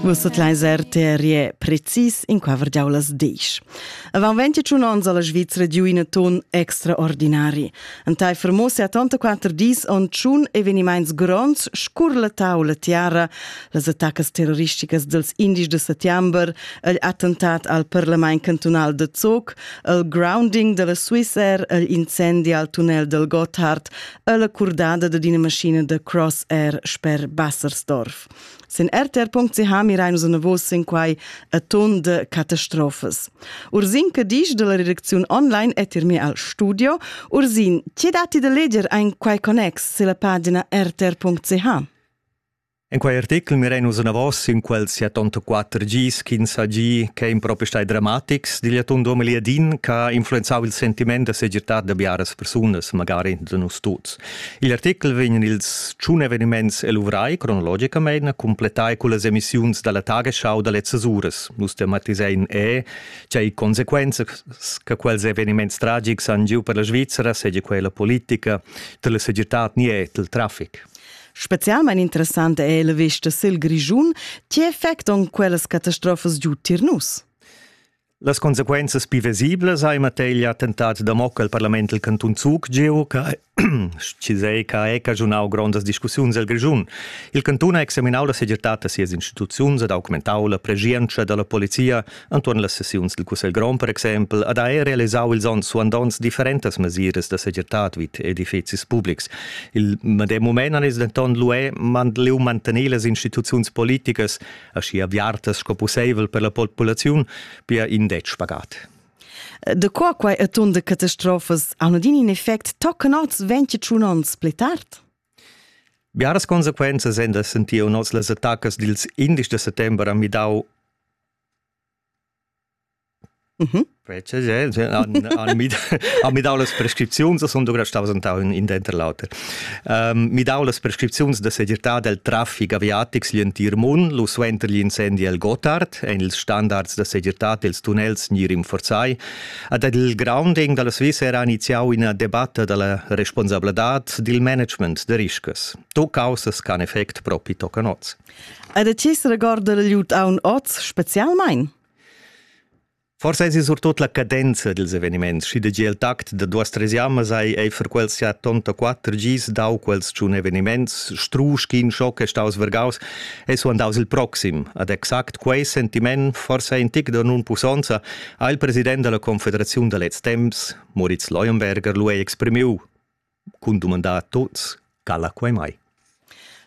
Vus sut leis RTRE precis in quaver giaulas desch. Avant 21 ans alla Svizzera giu ina ton extraordinari. Antai fermosi a tonta quatter dis on tschun evenimaints gronds scur la taula tiara, las attacas terroristicas dels indis de settember, il attentat al parlament cantonal de Zoc, il grounding della Swiss Air, il incendi al tunnel del Gotthard, alla cordada da d'ina maschina da Cross Air sper Bassersdorf. Sin rtr.ch mirain nus navos sin quai a ton de catastrofes. Ursin Cadisch della redacziun online è tirmi al studio. Ursin, ti dati da leger ein quai connex sulla pagina rtr.ch? En quei article mirein nus anavos in quel siatonta quater gis ch'ins ha gi che ein propi stai dramatics digl atun 2010 che ha influenzau il sentiment da segirtad da biaras persunas, magari da nus tuts. Igl article vegn ils tschun eveniments eluvrai cronologicamein a completai con las emissiuns dalla Tagesschau da lezzas uras. Nus tematisein e cei consequenzas che quels eveniments tragics han giu per la Svizzera, seigi quella politica, dalla segirtad ni el traffic. Specialmein interessant è la vesta sil Grischun. Ti effect on quellas catastrofas giu tir nus? Las consequenzas pivesiblas ha in materia attentat da mocca al parlament del cantun Zug geo che Chisei che è cagiunau grondas discussiuns el Grischun. Il cantun ha examinau la segirtad da sias instituziuns e documentau la preschientscha dalla polizia Antuon las sessiuns dil Cussegl grond per exempel ha da er realisau ils onns suandonts differentas mesiras da segirtad vid edifizis publics. Il medem mument han els denton lué mandliu mantener las instituziuns politicas aschi aviartas sco pusseivel per la populaziun, pia in dec pagat. De qua quai e ton de catastrofas hanno din in effect tocken oz 21 ons pli tard? Biaras consequenzas en da sentiu nos las attacas dils 11 de settember a midau ha midau las prescripziuns e sun ducra staus entau in denter l'auter. Midau las prescripziuns da segirtad el traffic aviatic sigl entir mund, lu suenter gli incendi el Gotthard ein ils standards da segirtad els tunnels ni rinforzai. Ed ed il grounding dalla Sviza era iniziau ina debatta dalla responsabladad dil management da riscas. Tut caussas ch'han effect propi toccan oz. Ed a chi se regorda l'ajuut aun oz specialmain? Forsa es surtut la cadenza dels eveniments, schi da giel tact da duas tresiamas hai ei for quels ja tonta quatter gis dau quels tschun eveniments, strusch ch'in schoc è staus vergaus, e su andaus il proxim. Ad exact quei sentiment, forsa in tic da nun pussonza, ha il president della Confederaziun da lez temps, Moritz Leuenberger, lu ei exprimiu. cun dumandar a tuts cala quai mai.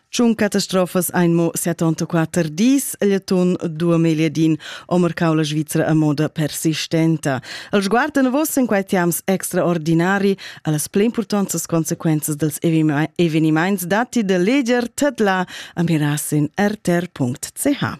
Tschun catastrofas ein mo 74 dis el atun 2010 o marcau la Svizra a moda persistenta. El sguard davos en quei tiams extraordinari allas pli importantas consequenzas dels evenimaints datti de leger tedla a mirasin rtr.ch.